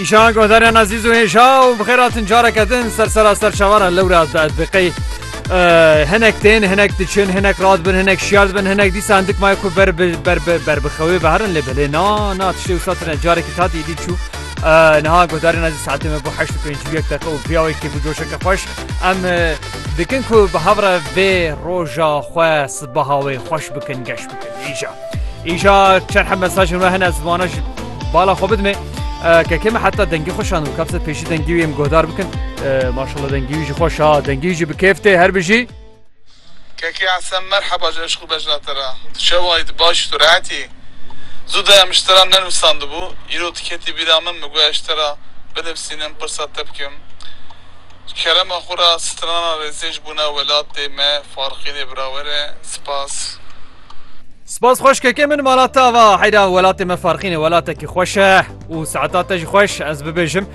Îşan godaryan azîz û hêja û bi xêratin careke din ser sera ser çavara lewra diqey. Hinek tên hinek diçin hinek rad bin hinek şiyar bin hinek dî sandik may ku ber ber ber bixewê berin lê bilê na na tiştê wisa tine carekî tatî dî çû. Niha godarên ezî saetê me bo heşt û pênc yek deqe û piyawekî bi coşeke xweş em dikin ku bi hevre vê roja xwe sibaha wê xweş bikin geş. Îşa îşa çerhe mesajên we hene zivana ji bala xwe bidime kekê me heta dengî xweşan û kapse pêşî dengî wê em guhdar bikin maşala dengî wî ji xweşa dengî wî jî bi kêf tê her bijî Kekê Esen merheba ji eşq û bejna te re tu çewayî tu baş î tu rehet î zû de em ji te re nenûsandibû îro tu ketî bîra min min got ez ji te re binivîsînim pirsa te bikim Kerema xwe ra strana rêzêj bûna welatê me Farqînê birawer e. Spas. Spas xweşkeke min mala te ava heyra welatê me farqîne welatekî xweş e û saeta te jî xweş ez bibêjim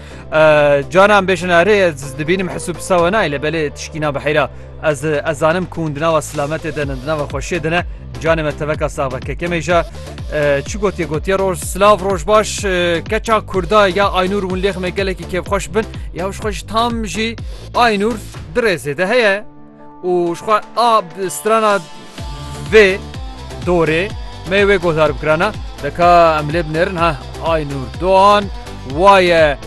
canan bêjin erê ez dibînim hesû pisa we nayê lê belê tişkî nabe heyra Ez ez zanim ku hûn di nava silametê de ne, di nava xweşiyê de ne. Canê me teveka sax be. Keke me jî çi gotiye gotiye roj silav roj baş keça kurda ya aynûr hûn lêx me gelekî kêfxweş bin ya ji xwe ji tam jî aynûr di rêzê de heye û ji xwe a strana Vê dorê me wê guhdar bikira na. Deka em lê binêrin ha Aynur Doğan waye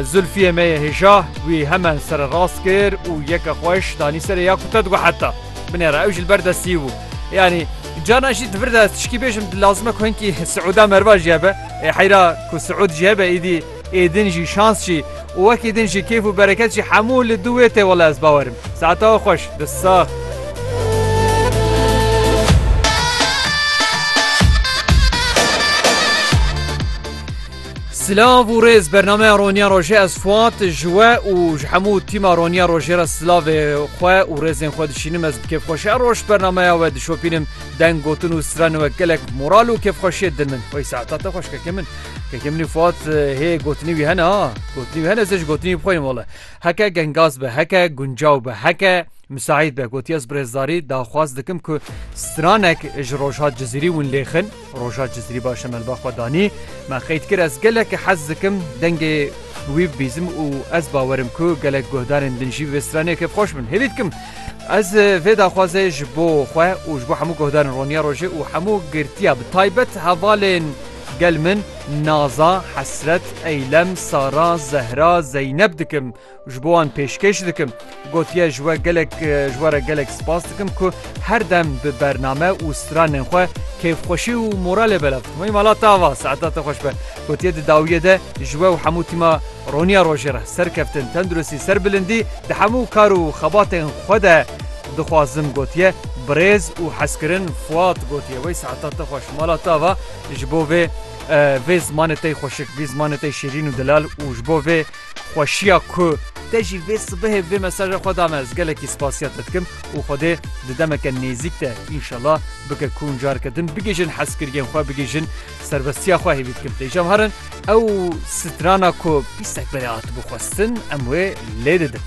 Zulfiyê me yê hêja wî hemen sere rast kir û yeke xweş danî serê ya ku te digo heta binêra ew jî li ber destî bû. Yanî carna jî di vir de tişkî bêjim lazim e ku hinkî siûda merva jî hebe. Ê heyra ku siûd jî hebe îdî. Ê din jî şans jî û wekî din jî kêf û bereket jî hemû li dû wê tê wele ez bawer im. Saeta we xweş. Dest sax. Silav û rêz bernameya Roniya Rojê ez Fuat ji we û ji hemû tîma Roniya Rojê re silavê xwe û rêzên xwe dişînim ez bi kêfxweşiya roj bernameya we dişopînim deng gotin û strana we gelek moral û kêfxweşiyê din min. Wey saeta te xweşkeke min. Keke min û Fuat hê gotinî wî hene ha gotinî wî hene ez ê ji gotinî wî bi xwe yên wele. Heke gengaz be heke guncaw be heke misaîd be gotiye ez bi rêzdarî daxwaz dikim ku stranek ji Rojhat Cizîrî win lêxin Rojhat Cizîrî baş e melba xwe danî me qeyd kir ez gelek hez dikim dengê wî bibîzim û ez bawerim ku gelek guhdarên din jî vê stranê kêfxweş bin hêvî dikim ez vê daxwazê ji bo xwe û ji bo hemû guhdarên roniya rojê û hemû girtiya bi taybet hevalên Gel min naza, hesret, eylem, sara, zehra, zeyneb dikim ji bo wan pêşkêş dikim. Gotiye ji we gelek ji we re gelek spas dikim ku her dem bi bername û stranên xwe kêfxweşî û moralê belav dikim. Ey mala te ava saeta te xweş be. Gotiye di dawiyê de ji we û hemû tîma Roniya Rojê re serkeftin, tenduristî, serbilindî di hemû kar û xebatên xwe de Dixwazim gotiye birêz û hezkirin Fuat gotiye wey saeta te xweş mala te ava ji bo vê vê zimanê tey xweşik vî zimanê tey şirîn û dilal û ji bo vê xweşiya ku te jî vê sibehê vê mesaja xwe dame ez gelekî spasiya te dikim û xwedê di demeke nêzîk de înşela bike ku careke din bigihîjin hezkiriyên xwe bigihîjin serbestiya xwe hêvî dikim tê cem herin ew strana ku pîsek berê hatibû xwestin em wê lê didin.